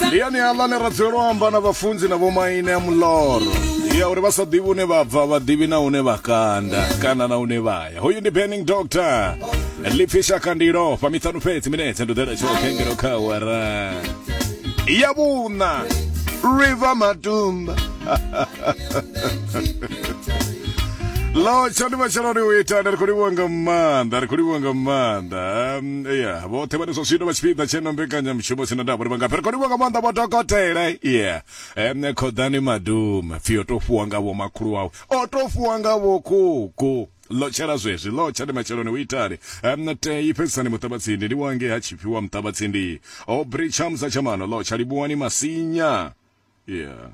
ndi ya nialane ra dzulelo amba na vhafunzi na vhomaine a muloro ya uri vha sa ḓivhi une vha bva vha ḓivhi na une vha kanda kana na une vha ya hoyu ndi burning doctor lipfisha kandilo fha miṱanu fhedzi minetse ndi ḓela tsho khengelo kha wara ya vhuṋa river matumba lotsha ndi matshelo ni u ita ndi ri khou livhuwa nga maanḓa ri khou livhuwa nga maanḓa Um, ya vhoṱhe vhane zwa zwino vha tshipiḓa tsheno mbekanyamushumo sina ndavha uri vha nga fhera kholiwa nga maanḓa vhodokotela yeah ene khoḓani madume pfi o to fuwa nga vho makhulu wawe o to fuwa nga vho kuku lotshela zwezwi lotsha ndi matsheloni u itani mnatei fhedzisani muṱavhatsindi ndi wange ha tshifhiwa muṱavhatsindi o bricham sa tshamano lotsha libuwani masinya yeah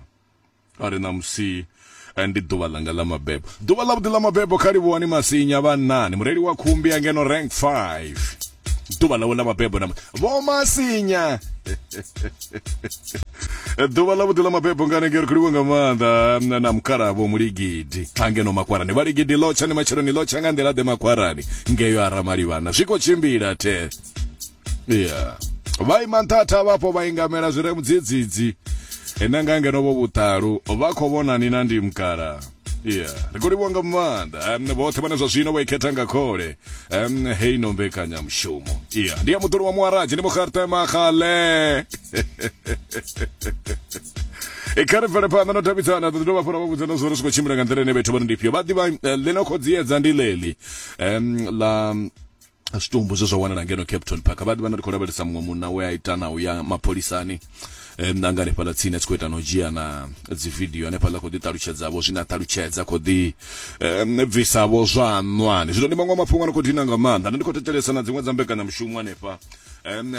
a re na musi eh, ndi ḓuvha ḽanga ḽa mabebo ḓuvha ḽavhuḓi ḽa mabebo kha livhuwani masinya vhannani mureili wa khumbi ya ngeno rank 5 ḓuvha ḽawe ḽa mabebo na vho masinya ḓuvha ḽavhuḓi ḽa mabebo nga hanengei ri khou livha nga maanḓa mm, na mukalavho muligidi angeno makwarani vhaligidi lotsha ni matsheloni lotsha nga nḓila ḓe makwarani ngeyo a ramalivhana zwi khou tshimbila the yeah vha ima nṱhatha vhapo vha ingamela zwi re mudziedzidzi ene nga ngeno vho vhuṱalu vha khou vhona ni na ndi mukala yeah ri khou livhonga maanḓa um, vhoṱhe vhane zwa zwino vha ikhetha nga khole um, hei no mbekanyamushumo yeah ndi ya muḓulu wa muharadzi ndi muhartemahale e kha ri bvele phanḓa no davhidzana ḓo dovha fhora vha vhudza na zwo ri zwi khou tshimbila nga nḓila ine vhethu vha ri ndi fhio vha ḓivha eh, ḽi no khou dziedza ndi ḽeḽi um, ḽa Zwitumbu zwe zwa wanala ngeno Cape Town Park, vhaḓivhi vha no ri khou lavhelesa muṅwe munna we a ita na u ya mapholisani nga hanefhaḽa tsini a tshi khou ita na u dzhia na dzividio hanefhaḽa, khou ḓi ṱalutshedzavho zwine a ṱalutshedza, khou ḓi bvisavho zwa ṋwani. Zwino ndi maṅwe a mafhungo a no khou dina nga maanḓa. Nṋe ndi khou thetshelesa na dziṅwe dza mbekanyamushumo hanefha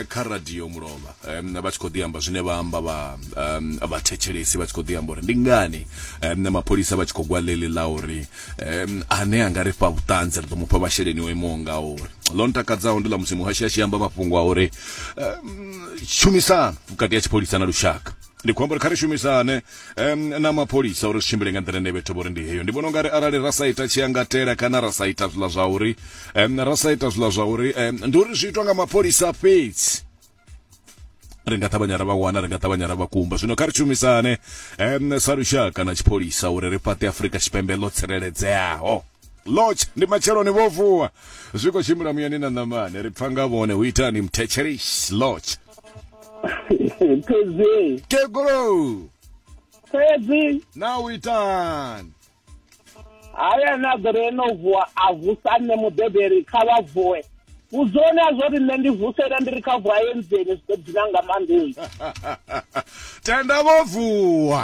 kha radio mulovha vha tshi khou ḓi amba zwine vha amba vha vhathetshelesi vha tshi khou ḓi amba uri ndi ngani mapholisa vha tshi khou gwa ḽeḽi ḽa uri um ane a nga ri fha vhuṱanzi ri ḓo mufha masheleni o imaho nga uri ḽo ntakadzaho ndi ḽa musi muhashi a tshi amba mafhungo a uri um, tshumisano vhukati ha tshipholisa na lushaka ndi khou amba uri kha ri shumisane um, na mapholisa uri zwi tshimbile nga nḓila ine vhetho vho ri ndi heyo ndi vhona ungari arali ra sa ita tshiangatela kana ra sa ita zwiḽa zwa uri um, ra sa ita zwiḽa zwa uri um, ndi uri zwi itwa nga mapholisa fhedzi ri nga ṱavhanya ra vha wana ri nga ṱavhanya ra vha kumba zwino kha ri shumisane um sa lushaka na tshipholisa uri ri fhaṱe afurika tshipembe ḽo tsireledzeaho lodge ndi matsheloni vho vuwa zwi khou tshimbila muyani na ṋamane ri pfa nga vhone hu itani mthetshelisi lodge phedzi kegolo phedzi na u itani haya ane a ḓo ri ene u vuwa a vusa nṋe mudederi kha vha vuwe vhudzoni a zwo ri nṋe ndi vusela ndi ri kha vuwa yenzeni zwi ḓo dina nga maanḓa ezwi tenda vho vuwa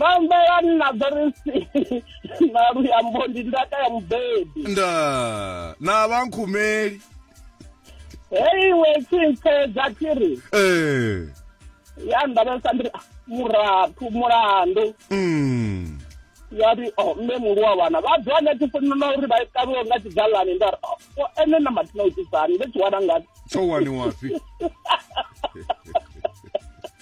rambelani na ḓorisi na luyambo ndi ndaka ya mubebi nda na vhankhumeli heiwe tsintshe dza thiri ee ya ndavhesa ndi ah, murathu mulandu mm. ya ri o oh, mme mulu wa vhana vha bva na tifuni na uri vha ṱavhiwe nga tshigalani nda ri o oh, oh, ene na mathina u tisani ndo tshi wana ngati tsho wani wafi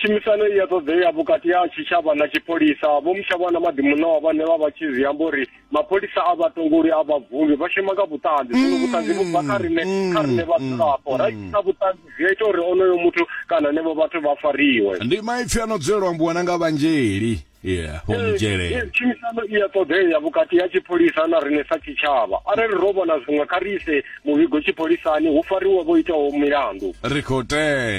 Tshumisano i ya ṱoḓea vhukati ha tshitshavha na tshipholisa. Vho Mushabana Maḓimunowa vhane vha vha tshi zwi amba uri mapholisa a vha tongoli a vha vungi vha shuma nga vhuṱanzi. Zwino vhuṱanzi vhu bva kha riṋe kha riṋe vhadzulapo. Ra tshisa vhuṱanzi zwi a ita uri onoyo muthu kana henevho vhathu vha fariwe. Ndi maipfi a no dzulela u ambiwa na nga vhanzheli. Yeah, vho Ee, Mudzhelele. ee, tshumisano i ya ṱoḓea vhukati ha tshipholisa na riṋe sa tshitshavha. Arali ro vhona zwiṅwe kha ri ise muvhigo tshipholisani hu fariwe vho itaho milandu. Ri khou tenda.